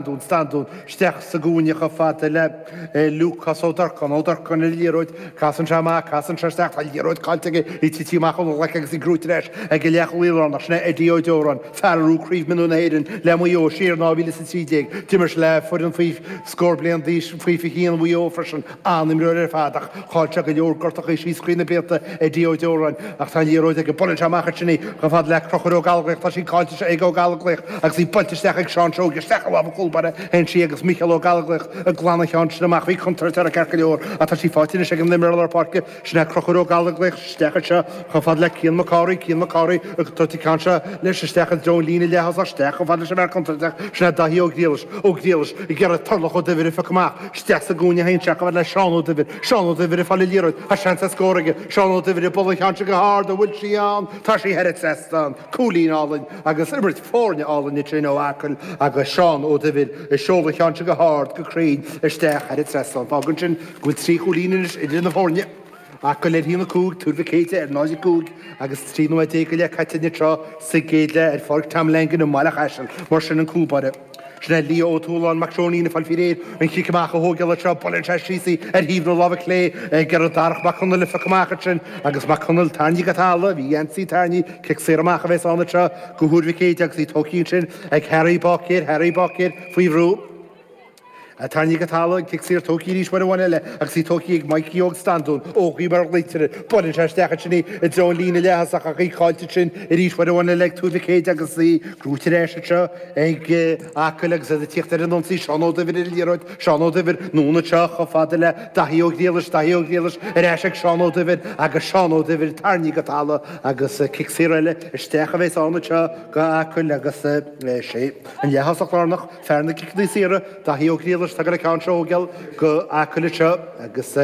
Standún, Standún, isteach sa gcúinne chomh fada le Lúcás Ó Durcáin, Ó Durcáin ar an liathróid, casann sé amach, casann sé isteach, tá an liathróid caillte aige, í tití amach óna ghlaic agus í gnóite ar ais ag an leathchúlaí lárnach, sin é Eddie Ó Deoráin, fear a rug Craobh Mionúr na hÉireann le Maigh Eo siar in 2013, d'imir sé le foireann faoi scór bliain d'aois faoi 21 Mhaigh Eo freisin. An-imreoir ar fad ach cráite ag go leor gortachaí síos trí na blianta Eddie Ó Deoráin ach tá an liathróid aige. Buaileann sé amach as sin í chomh fada le Conchúr Ó Gallóglaigh. Tá sí caillte anois ag Ó Gallóglaigh agus í buailte isteach ag Seán Seoige. Isteach i lámh an chúlbáire théann sí agus Mícheál Ó Gallóglaigh ag glanadh an cheann sin amach. Bhí contúirt ansin ceart go leor ach tá sí faighte anois ag an imreoir lár páirce. Sin é Conchúr Ó Gallóglaigh isteach anseo chomh fada le Cian Mac Cárthaigh. Cian Mac Cárthaigh ag tabhairt an ceann seo leis isteach i dtreo an líne leaththosach isteach chomh fada leis an bhfear contúirteach. Sin é Dáithí Ó Griallais. Ó Griallais ag iarraidh Turlough Ó Duibhir a phiocadh amach. Isteach sa gcúinne théann sí chomh fada le Seán Ó Duibhir. Seán Ó Duibhir ag fáil an liathróid. Tá seans ar scór aige. Seán Ó Duibhir ag bualadh an cheann seo go hard. An bhfuil sí ann? Tá sí thar an trasnán. Cúilín álainn agus imirt foirne álainn ansin ó Acaill agus Seán Ó Duibhir ag seoladh an cheann seo go hard, go cruinn isteach thar an trasnán. Fágann sin go bhfuil trí chúilín anois idir na foirne. Acaill ar 1-5, Tuar Mhic Éadaigh ar 0-5 agus 13 nóiméad go leith caite anseo sa gcéad leath ar Pháirc Tom Langan i mBaile Chaisil. Mar sin an cúlbáire. Sin é Lee Ó Tuathaláin Mac Seoinín, ag fáil faoi réir an chic amach a thógáil anseo. Buaileann sé síos í ar thaobh na láimhe clé ag iarraidh Darach Mac Conaill a phiocadh amach ansin agus Mac Conaill tarraingthe go talamh. Bhí a gheansaí tarraingthe. Cic saor amach a bheas ann anseo do Thuar Mhic Éadaigh agus í tógthaí ansin ag Harry Bácéir. Harry Bácéir faoi bhrú. Tarraingthe go talamh, cic saor tógthaí arís uair amháin eile agus í tógthaí ag Maidhcí Óg Standún, Ógie mar a ghlaoitear air. Buaileann sé isteach ansin í, i dtreo an líne leaththosach ach í caillte ansin arís uair amháin eile ag Tuar Mhic Éadaigh agus í gnóite ar ais anseo ag Acaill agus iad ag tíocht ar an ionsaí. Seán Ó Duibhir ar an liathróid, Seán Ó Duibhir, anonn anseo chomh fada le Daithí Ó Griallais, Daithí Ó Griallais, ar ais ag Seán Ó Duibhir agus Seán Ó Duibhir tarraingthe go talamh agus cic saor eile isteach a bhéas ann anseo do Acaill agus sé an leaththosach lárnach, Fear na gciceanna saora, Daithí Ó Griallais, atá ag goil an ceann seo a thógáil do Acaill anseo agus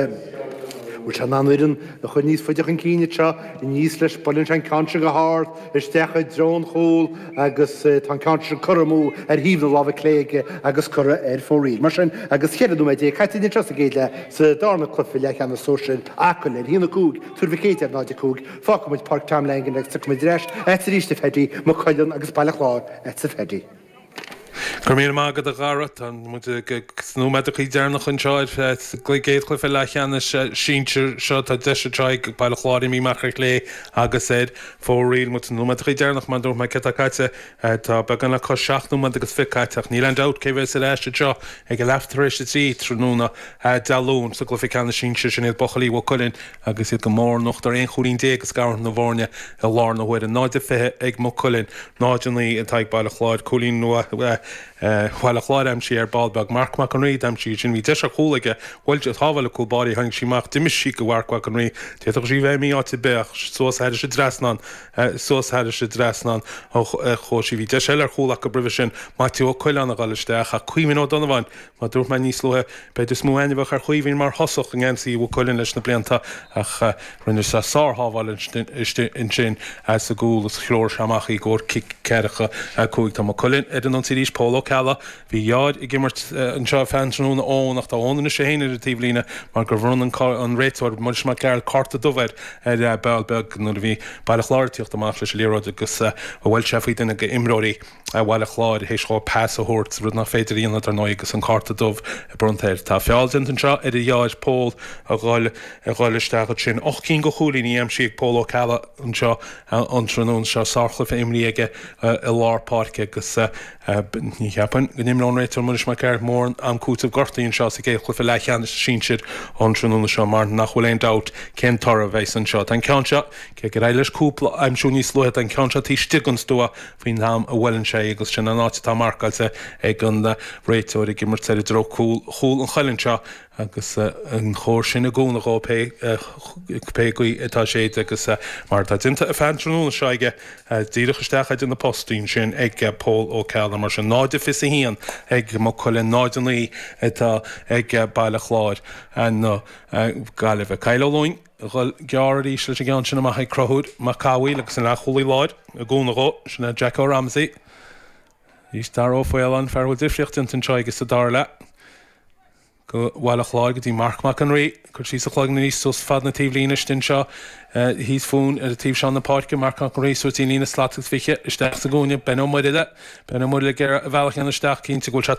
bhfuil sé in ann a fhoireann a chur níos faide chun cinn anseo aníos leis. Buaileann sé an ceann seo go h-ard isteach i dtreo an chúl agus tá an ceann seo curtha amú ar thaobh na láimhe clé aige agus curtha ar fóraoil. Mar sin agus cheithre nóiméad déag caite anseo sa gcéad leath sa dárna cluife leathcheannais sóisir Acaill ar 1, 5 Tuar Mhic Éadaigh ar 0, 5. Fágfaimid Páirc Tom Langan agus tiocfaimid ar ais arís chomh fada le Maigh Cuilinn agus Baile Chláir agatsa a Phaddy. Go raibh míle maith agat a Dhara. Tá muid sna nóiméadachaí deireanach anseo sa gcéad chluiche leath cheannais sinsir seo. Tá deis anseo ag Baile Chláir, imithe amach ar chlé agus ar fóraoil. Muid sna nóiméadachaí deireanach mar dúirt mé céard tá caite. Tá beagán le cois seacht nóiméad agus fiche caite ach níl aon dabht cé bhéas ar ais anseo ag a leath tar éis a trí tráthnóna Dé Luain sa gcluiche ceannais sinsir. Sin iad buachaillí Mhaigh Cuilinn. Agus iad go mór in uachtar, aon chúilín déag ag scaradh na bhfoirne i láthair na huaire, 0-20 ag Maigh Cuilinn, 0-9 atá ag Baile Chláir. Cúilín nua Bhaile Chláir aimsithe ar ball beag. Marc Mac an Rí a d'aimsigh é sin. Bhí deis ar chúl aige bhuail sé, shábháil an cúl báire. Tháinig sí amach, d'imigh sí go Mharc Mhac an Rí. D'fhéadfadh sí bheith imithe áit ar bith ach suas thairis an trasnán, suas thairis an trasnán a chuaigh sí. Bhí deis eile ar chúl acu roimhe sin, Maitiú Ó Coileáin a ghoil isteach ach Caoimhín Ó Donnabháin, Mar a dúirt mé níos luaithe, b'fhéidir is mó aithne a bheadh ar Chaoimhín mar thosach i ngeansaí Mhaigh Cuilinn leis na blianta ach rinne sé sár-shábháil ansin sa gcúl is threoir sé amach í gcomhair cic ceathracha a cúig. Tá Maigh Cuilinn ar an ionsaí arís Pól Ó Ceallaigh. Bhí a dheartháir ag imirt anseo feadh an tráthnóna Eoin ach tá Eoin anois é féin ar an taobh líne mar gur bhronn an réiteoir, Muiris Mac Gearailt cárta dubh air ar ball beag nuair a bhí Baile Chláir ag tíocht amach leis an liathróid agus a bhuail sé faoi duine go imreoirí. Bhaile Chláir théis dhó pas a thabhairt, rud nach féidir a dhéanamh dar ndóigh agus an cárta dubh bronnta air. Tá feall déanta anseo ar a dheartháir, Pól a dhul a dhul isteach ansin. Ocht gcinn de chúilíní aimsithe ag Pól Ó Ceallaigh anseo an tráthnóna seo. Sárchluiche imrithe aige i lár páirce agus ní cheapaim go n-imreoidh an réiteoir Muiris Mac Gearailt mórán am cúitimh gortuithe anseo sa gcéad chluiche leathcheannais sinsir an tráthnóna seo mar nach bhfuil aon dabht cén toradh a bheidhs anseo. Tá an ceann seo, cé gur éirigh leis cúpla a aimsiú níos luaithe, tá an ceann seo taobh istigh den stua faoin am a bhuaileann sé agus sin an áit atá marcáilte ag an réiteoir ag imirt i dtreo chúl an chuilinn seo agus an chóir sin i gcúnamh dhó pé gaoth atá ag séideadh agus mar atá déanta ar feadh an tráthnóna seo aige díreach isteach idir na postaí ansin ag Pól Ó Ceallaigh mar sin 0 a fiche a haon ag Maigh Cuilinn 0 a naoi atá ag Baile Chláir na Gaillimhe Kyle Ó Luing. Ghoil gearr arís leis an gceann sin amach ag Conchúr Mac Cathmhaoil agus an leathchúlaí láir i gcúnamh dhó, sin é Jacko Ramsey. Arís Dara Ó Faoláin, an fear a bhfuil difríocht déanta anseo aige sa dara leath. Go Bhaile Chláir go dtí Marc Mac an Rí. Cur síos a chloigeann arís suas fad na taobhlíne istigh anseo thíos fúinn ar an taobh seo na páirce. Marc Mac an Rí suas dtí'n líne slat agus fiche isteach sa gcúinne. Ben Ó Muirthile. Ben Ó Muirthile ag iarraidh a bhealach a dhéanamh isteach. Cinnte go bhfuil sé